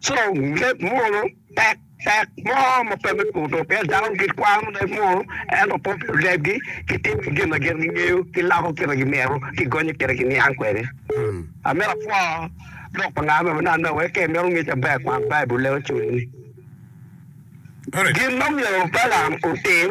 Co leb munu pek pek mo ma pe me kuto, pien dano gikwano leb munu, ento pe pi lebgi, gitimo ki gin ma gin gingeyo, giloko kit ma gimito, gigonyo kit ma giniang kwede. Amito apwo lok pa ngat me manana wek ka imito ngec aber, kwan Baibul leko cwinyi. Gin ma myero Balaam otim.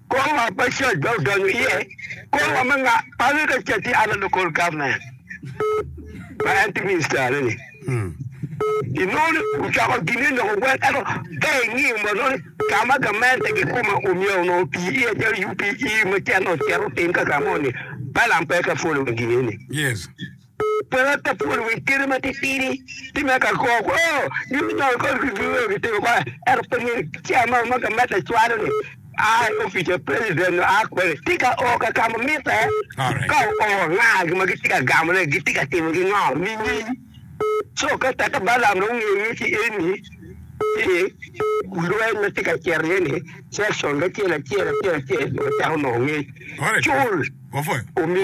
Kor lwak ma Church dong odonyo iye, kor wa ma pale ka ca tye Under Local Government ma en tye Minister ne ni. Inongo ni ocoko gine loko gwel ento ka ingiyo ma nongo ka ma gamente gi kuma omyero nongo oti iye calo UPE ma cen ocito otim ka ka mo ni Balam pe ka follow gine ni. Yes. Pwod pe apwod wi kite ma titidi ki me ka kwo kwo nyo me nongo kodi ki dul onongo kitimo kwan, ento pe nino kica mo ma gametta cwalo ni a i opic pa president nyo a kwene tika oo ka ka ma mitte. Alright. Ka oo nga gin ma gitye ka gamone, gitye ka timo ki ngo nining? Co ka teka Balaam dong ongeyo nyo ci eni ci lweny ma tye ka cito iye ni section acel acel acel acel dong ocako nongo ngec. Alright. Cul Wapwoyo. omi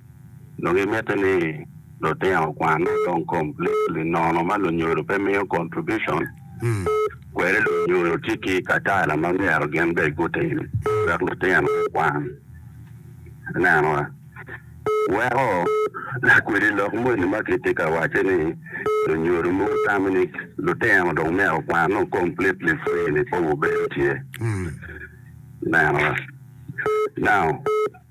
Dong gimitte ni lutino kwanne kong completely nono ma lunyodo pe miyo contribution, kwede lunyodo tye ki katala ma myero gin bene gutim wek lutino gukwan. Ineno? Weko lakwedi lok moni ma kitye ka wacce ni lunyodo mogo tamo ni lutino dong myero gukwan dong completely free-ni pe wubedo tye. Ineno? Now,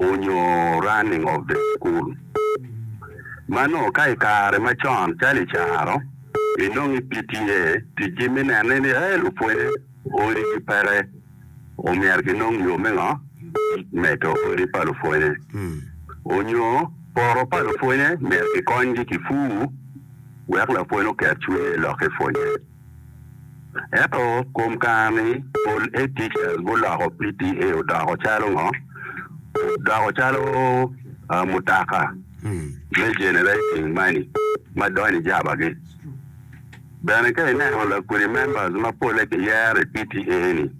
onyo running of the school. Manoo ka i kare macon calo i caro inongo i PTA tic gi me nene ni ee lupwonye odi gi peke omyero ki nong yo me ngo? Medo odi pa lupwonye. Onyo poto pa lupwonye myero ki kony gi ki fur wek lapwony oket cwinye lok ki pwonye. Ento kom kare-ni, pol ATL guloko PTA odoko calo ngo? Odoko calo mutoka me generating money ma donyo i jabagi. Bene ka ineno lakwedi members ma polle kiyero i PTA ni,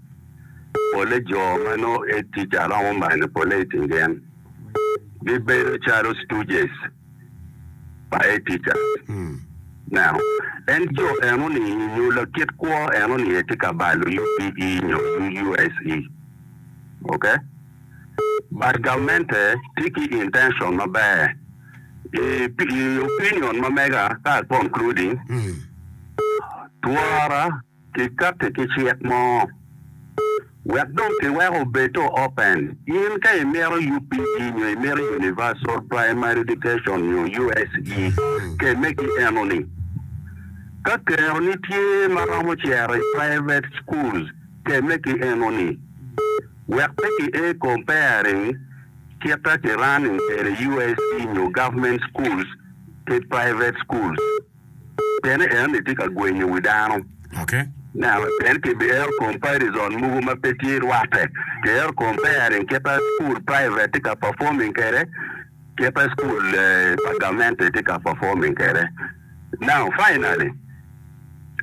polle jo ma nongo ATL romo manyo polle i kin gen. Gibedo calo stooges. pa Etica. Neno, en jo eno ni nyo lakit kwo eno ni aye tye ka balo UPE nyo UUSE. Ok? But gamente tye ki intention maber. I, i opinion ma mega ka I concluding, twara Kikatti ki cik mo wek dong kiweko obed to open. In ka imito UPE nyo imito Universal Primary Education nyo USE, kemme ki enoni. Ka keroni tye ma romo cito i private schools, kemme ki enoni. Wek pe ki ee comparing kita ki running kwede USE nyo government schools ki private schools. Pien en tye ka gwenyo wi dano. Pien kibiero comparison mogo ma pe tye rwatte. Kiero comparing kit ma cukul private tye ka performing kwede ki kit ma cukul pa gamente tye ka performing kwede. Now, finally,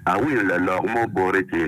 awinyo lalok mo boti cing-ni.